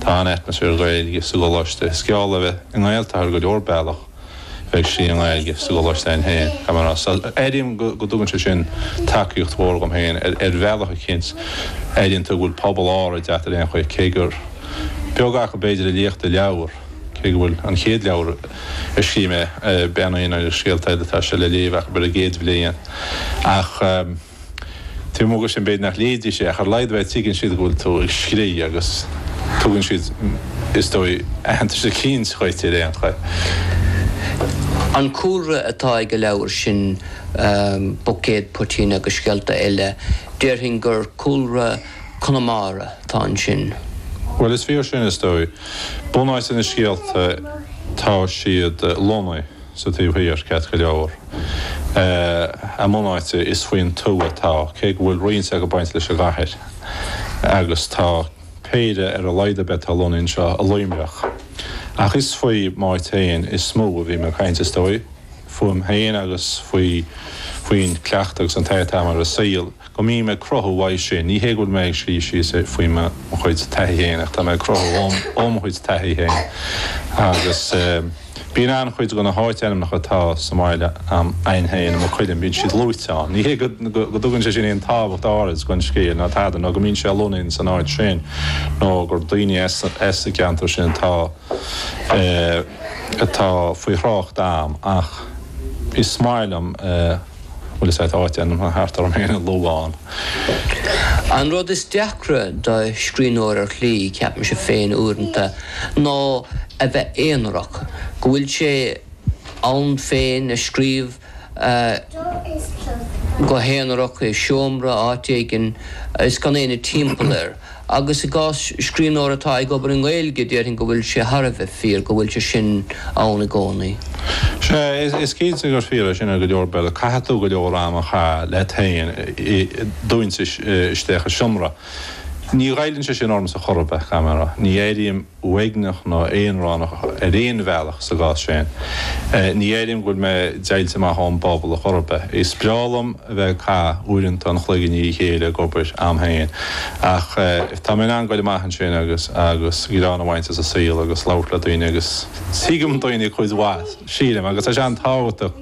Tá an-atmaisféar Gaeilge sa gColáiste. Is geall le bheith i nGaeltacht ar go leor bealach bheith istigh i nGaeilge sa gColáiste a'ainn féin, caithfidh mé a rá. So, airím go dtugann sé sin tacaíocht mhór dhom féin ar bhealach eicínt. Airíonn tú go bhfuil pobal áirid a't ar aon chaoi, cé gur beag acu b'fhéidir a léifeadh do leabhar, cé go bhfuil an chéad leabhar a scríobh mé, Bean Aonair agus Scéalta Eile, tá sé le léamh acu ar an gcéad bhliain. Ach. Taobh amuigh de sin b'fhéidir nach léifidís é ach ar a laghad ar bith tuigeann siad go bhfuil tú ag scríobh agus tugann siad is dóigh aitheantas eicínt dhuit ar aon chaoi. An cúlra atá ag an leabhar sin Buicéad Poitín agus Scéalta Eile déarfainn gur cúlra Conamara atá ansin. Bhuel is fíor sin is dóigh. Bunáite na scéalta tá siad lonnaithe. sa taobh thiar, ceart go leor. A mbunáite is faoin tuath atá, cé go bhfuil roinnt acu ag baint leis an gcathair, agus tá péire ar a laghad ar bith atá lonnaithe anseo i Luimneach. Ach is faoi m'áit féin is mó a bhím ag caint, is dóigh, fúm féin agus faoi, faoin cleachtadh agus an taithí atá a'm ar an saol. go mbím ag cruthú uaidh sin. Ní hé go bhfuil mé ag scríobh síos faoi mo chuid taithí féin ach tá mé ag cruthú ó mo chuid taithí féin agus bíonn an-chuid de na háitainmneacha atá sa mbaile a'm féin i Maigh Cuilinn, bíonn siad luaite ann. Ní hé go dtugann sé sin aon tábhacht áirid don scéal ná tada ná go mbíonn sé lonnaithe san áit sin nó gur daoine as an gceantar sin atá faoi thrácht a'm ach is maith liom Bhuel, is é atá áitainmneacha thart orm féin a lua ann. An rud is deacra do scríbhneoir ar shlí, ceapaimse féin uaireanta, ná a bheith aonarach, go bhfuil sé ann féin ag scríobh go haonarach i seomra, áit éigin, is gan éinne timpeall air. Agus i gcás scríbhneora atá ag obair i nGaeilge, déarfainn go bhfuil sé thar a bheith fíor go bhfuil sé sin ann i gcónaí. Sea, is cinnte gur fíor é sin ar go leor bealaí. Caithfidh tú go leor ama a chaitheamh leat féin dúinte isteach i seomra. Ní ghoilleann sé sin ormsa chor ar bith, caithfidh mé a rá. Ní airím. uaigneach nó aonránach ar aon bhealach sa gcás sin. Ní dhéarfainn go bhfuil mé deighilte amach ón bpobal chor ar bith. Is breá liom a bheith ag caitheamh uaireanta an chloig i ndiaidh a chéile ag obair, am féin, ach tá mé in ann goil amach ansin agus greann a bhaint as an saol agus labhairt le daoine agus tuigim daoine cuid mhaith, sílim, agus tá sé an-tábhachtach.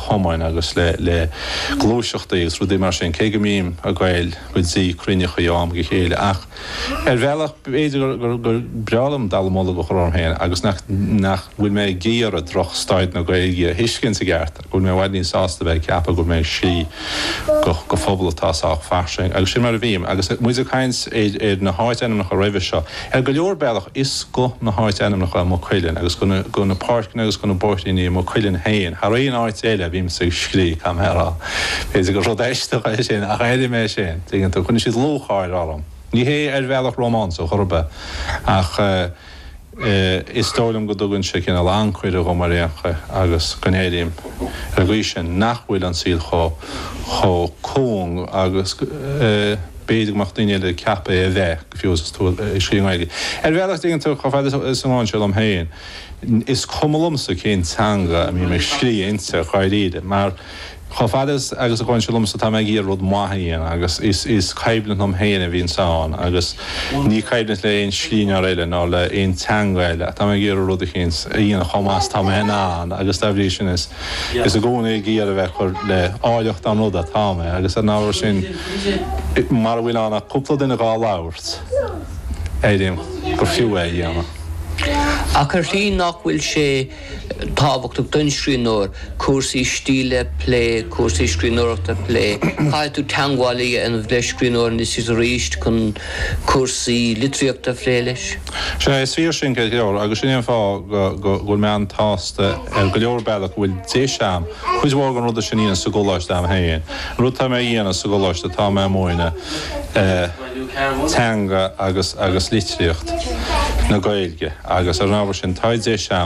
cumainn agus le gluaiseachtaí agus rudaí mar sin, cé go mbím ag goil go dtí cruinneachaí ó am go chéile. Ach ar bhealach b'fhéidir gur breá liom dallamullóg a chur orm féin agus nach bhfuil mé ag iarraidh drochstaid na Gaeilge a thuiscint i gceart, go bhfuil mé i bhfad níos sásta bheith ag ceapadh go bhfuil mé ag scríobh do phobal atá sách fairsing. Agus sin mar a bhím. Agus muid ag caint ar na háitainmneacha roimhe seo, Ar go leor bealach is go na háit-ainmneacha i Maigh Cuilinn agus go na páirceanna agus go na bóithríní i Maigh Cuilinn féin thar aon áit eile a bhímse ag scrí', caithfidh mé a rá. B'fhéidir gur rud aisteach é sin ach airím é sin, tuigeann tú, cuireann siad lúcháir orm. Ní hé ar bhealach rómánsach chor ar bith ach is dóigh liom go dtugann sé cineál ancaire dhom ar aon chaoi agus go n-airím ar an gcaoi sin nach bhfuil an saol chomh cúng agus B'fhéidir go mbeadh daoine eile ag ceapadh é a bheith, go fiú 's tú ag scríobh i nGaeilge. Ar bhealach is dtuigeann tú, chomh fada is a mbaineann sé liom féin, is cuma liomsa cén teanga a mbím ag scríobh inti, ach dháiríre, mar chomh fada is agus a bhaineann sé liomsa, tá mé ag iarraidh rud maith a dhéanamh agus is is coimhlint liom féin a bhíonns ann agus ní coimhlint le aon scríbhneoir eile ná le aon teanga eile ach tá mé ag iarraidh rud eicínt a dhéanamh chomh maith is atá mé in ann agus dá bhrí sin is Is i gcónaí ag iarraidh a bheith ag cur le áilleacht an ruda atá mé agus ar an ábhar sin, mara bhfuil ann ach cúpla duine dhá labhairt, airím gur fiú é a dhéanamh. Ach ar shlí nach bhfuil sé tábhachtach don scríbhneoir cúrsaí stíle a phlé, cúrsaí scríbhneoireachta a phlé? Caithfidh tú teangmháil a dhéanamh le scríbhneoir anois is arís chun cúrsaí litríochta a phlé leis. Sin é, is fíor sin ceart go leor agus sin é an fáth go bhfuil mé an-tsásta ar go leor bealach go bhfuil deis agam cuid mhór den ruda sin a dhéanamh sa gcoláiste agam féin. An rud atá mé a dhéanamh sa gcoláiste tá mé ag múineadh teanga agus litríocht na Gaeilge agus ar an ábhar sin tá deis agam